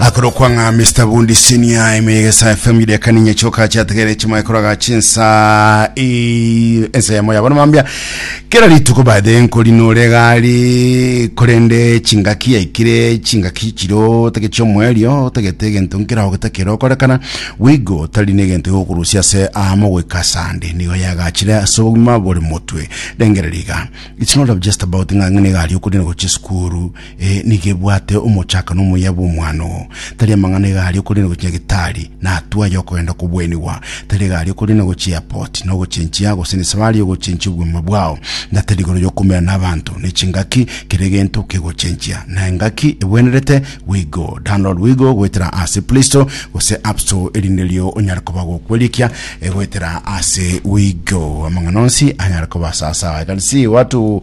akorokwa ng'a mr bundi senior emegesa fm idekaninye choka chategere chimaekoroga chinsa i- ensemo yabo nomambia kera rituko bathe nkori nore gari korende chingaki yaikire chingaki chiro otege chiomwerio otagete egento nkera ogetakera okorekana wigo tari negento gokurusia ase amo goika sande nigo yagachire ase obogima bore motwe rengereriga it's not just about ng'a ng'ene gari okori na gochia esukuru Ee, nigo ebwate omochakano omuya bw'omwana oo. Tari amang'ana iga aria okorende gochia Gitari, na atwo aya okogenda kobuenigwa. Tari iga aria okorende gochia Airport, na ogochenchia, gose nesafari y'ogochenchia obogima bwao. Na tari igoro y'okomeera n'abanto, ne chingaki, kera egento kegochenchia. Na engaki ebwenerete, Wigo, download Wigo goetera ase Play Store gose App Store, erinde erio onyare koba gokwerikia goetera ase Wigo. Amang'ana onsi anyare koba sasawa. I can see watu